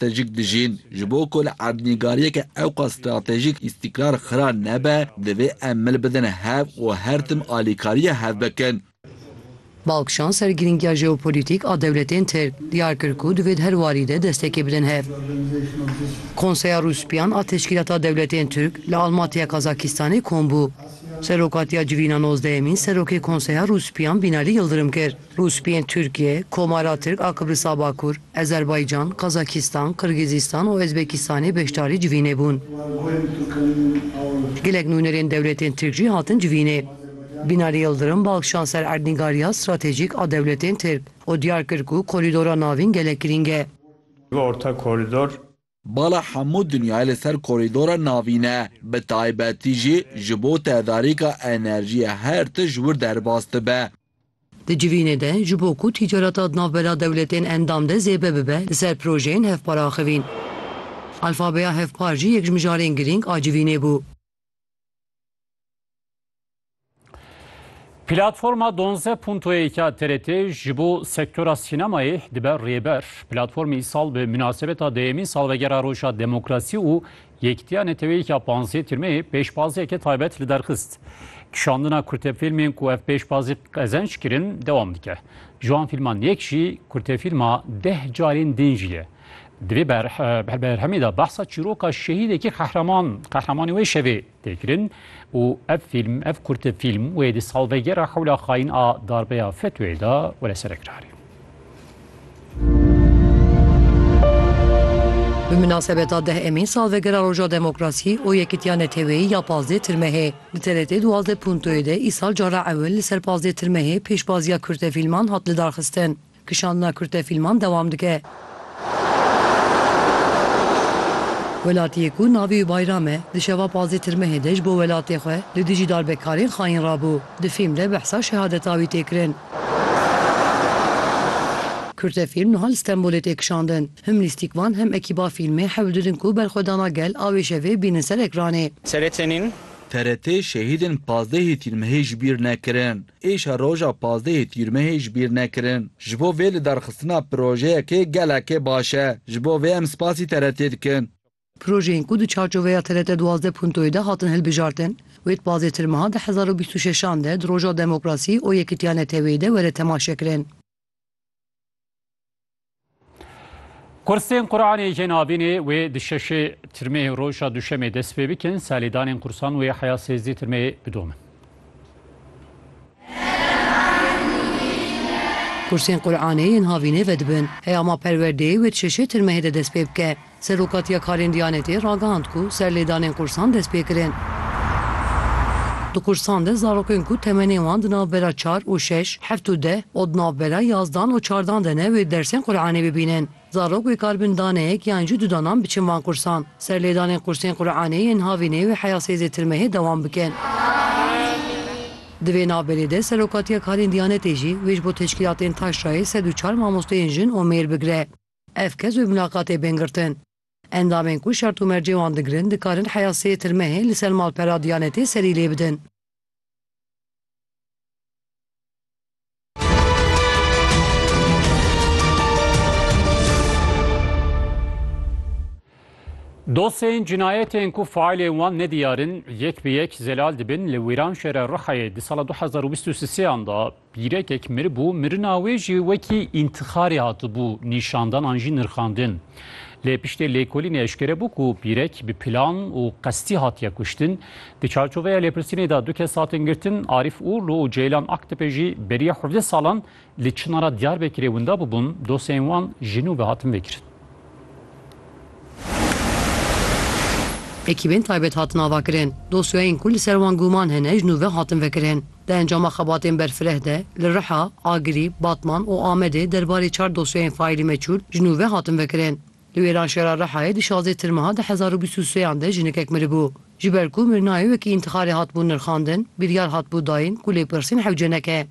Stratejîk dijîn, ji bo ku li erdnîgariyeke ewqas stratejîk îstîkrar xira nebe, divê em mil bidin hev û her tim alîkariya hev bikin. Balkşan ser girîngiya jeopolîtîk a dewletên Tirk, diyar kir ku divê di her warî de destekê bidin hev. Konseya Rûspîyan a Teşkîlata Dewletên Tirk li Almatiya Kazakistanê kom bû. Serokatiya civîna nozdehemîn Serokê Konseya Rûspîyan Bînalî Yildirim kir. Rûspiyên Tirkiye, Komara Tirk a Kibrisa Bakur, Ezerbaycan, Kazakistan, Kirgizistan û Ezbekistanê beşdarî civînê bûn. Gelek nûnerên dewletên Tirk jî hatin civînê. Binali Yildirim bi axiyan ser erdnîgariya stratejîk a dewletên Tirk û diyar kir ku korîdora navîn gelek girîng e. Orta Korîdor Bala hemû dinyayê li ser korîdora navîn e, bi taybetî jî ji bo tedarîka enerjiyê her tişt ji wir derbas dibe. Di civînê de ji bo ku tîcareta di navbera dewletên endam de zêde bibe li ser projeyên hevpar axivîn. Alfabeya hevpar jî yek ji mijarên girîng a civînê bû. Platforma Donze Puntoyê ka TRT ji bo sektora sînemayê dibe rêber. Platformê îsal bi münasebeta deyemîn salvegera Roja Demokrasî û Yekîtiya Neteweyîka Panzê Tirmeyê pêşbaziyeke taybet li derxist. Kişandina kurtefîlmên ku ev pêşbazî qezenc kirin dewam dike. Ji wan fîlman yek jî kurtefîlma Deh Carên Din jî ye. Di vê berhemê de behsa çîroka şehîdekî qehreman qehremanê wê şevê tê kirin û ev fîlm ev kurte fîlm wê di salvegera hewla xayîn a darbeya FETÖ'yê de were serekrarî. Bi minasebeta deh emîn salvegera Roja Demokrasî û Yekîtiya Neteweyî ya pazdeh Tirmehê li TRT duwazdeh Punto'yê de îsal cara ewil li ser pazdeh Tirmehê pêşbaziya kurtefîlman hat lidarxistin. Kişandina kurte fîlman dewam dike. Welatiyê ku navê wî Bayram e, di şeva pazdeh tirmehê de ji bo welatê xwe li dijî darbekarên xayîn rabû. Di fîlm de behsa şehadeta wî tê kirin. Kurte fîlm niha li Stenbolê tê kişandin. Him lîstîkvan hem ekîba fîlmê hewl didin ku berxwedana gel a wê şevê bînin ser ekranê. TRT nîn? TRT şehîdên pazdehê tîrmehê ji bîr nekirin. Êşa roja pazdehê Tîrmehê ji bîr nekirin. Ji bo vê lidarxistina projeyekê gelekê baş e. Ji bo vê em spasî TRT'ê dikin. Projeyên ku di çarçoveya TRT duwazdeh puntoyê de hatin hilbijartin, wê di pazêtir meha di hezar û bîst û şeşan de di Roja Demokrasî û Yekîtiya Neteweyî de were temaşekirin. Kursên Quranê jê nabînê wê di şeşê tirmeyê roja duşemê dest pê bikin, selêdanên kursan wê heya sêzdî tirmeyê bidomin. Kursên Quranê yên havînê vedibin, heya ma perwerdeyê wê di şeşê tirmeyê de dest pê bike. Serokatiya Karên Diyanetê ragihand ku serlêdanên qursan dest pê kirin. Di qursan de zarokên ku temenên wan di navbera çar û şeş, heft û deh û di navbera yazdan û çardan de ne wê dersên Quranê bibînin. Zarok wê kar bin daneyek yan jî du danan biçin van qursan. Serlêdanên qursên Quranê yên Havînê wê heya sêzdê tirmehê dewam bikin. Di vê navberê de Serokatiya Karên Diyanetê jî wê ji bo teşkîlatên Taşrayê sed û çar mamosteyên jin û mêr bigire. Ev kes wê mûlaqatê bên girtin. Endamên ku şert û mercê wan digirin dikarin heya sê tirmehê li ser malpera Diyanetê serî lê bidin. Dosyeyên cinayetên ku faîlên wan nediyar in yek bi yek zelal dibin li Wîranşehra Rihayê di sala du hezar û bîst û sêan de Pîrekek miribû, mirina wê jî wekî întixarê hatibû nîşandan an jî nirxandin. Lê piştê lêkolînê eşkere bû ku pîrek bi plan û qestî hatiye kuştin. Di çarçoveya lêpirsînê de du kes hatin girtin, Arîf Urlu û Ceylan Aktepe jî beriya hevdeh salan li Çinara Diyarbekirê winda bûbûn, dosyeyên wan ji nû ve hatin vêkirin. Ekîbên taybet hatin avakirin, dosyeyên ku li ser wan gûman hene ji nû ve hatin vekirin. Di encama xebatên berfireh de li Riha, Agirî, Batman û Amedê derbarê çar dosyayên faîlî meçûl ji nû ve hatin vekirin. Li wêran şera Rihayê di şazê Tirmiha di hezar û bîst û sê yan de jinekek miribû. Ji ber ku mirnayê wekî întixarê hatibû nirxandin, biryar hatibû dayîn ku lêpirsîn hewce neke.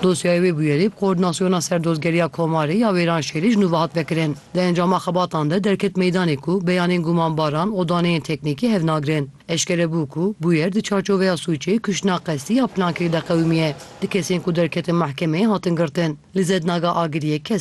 Dosyayê wê bûyerê bi Koordînasyona Serdozgeriya Komarê ya Wêranşehîrê ji nû ve hat vekirin. Di encama xebatan de derket meydanê ku beyanên gumanbaran û daneyên teknîkî hev nagirin. Eşkere bû ku bûyer di çarçoveya sûcê kuştina qestî ya plankirî de qewimî ye. Du kesên ku derketin mehkemeyê hatin girtin. Li Zed Naga Agiriyê kes e.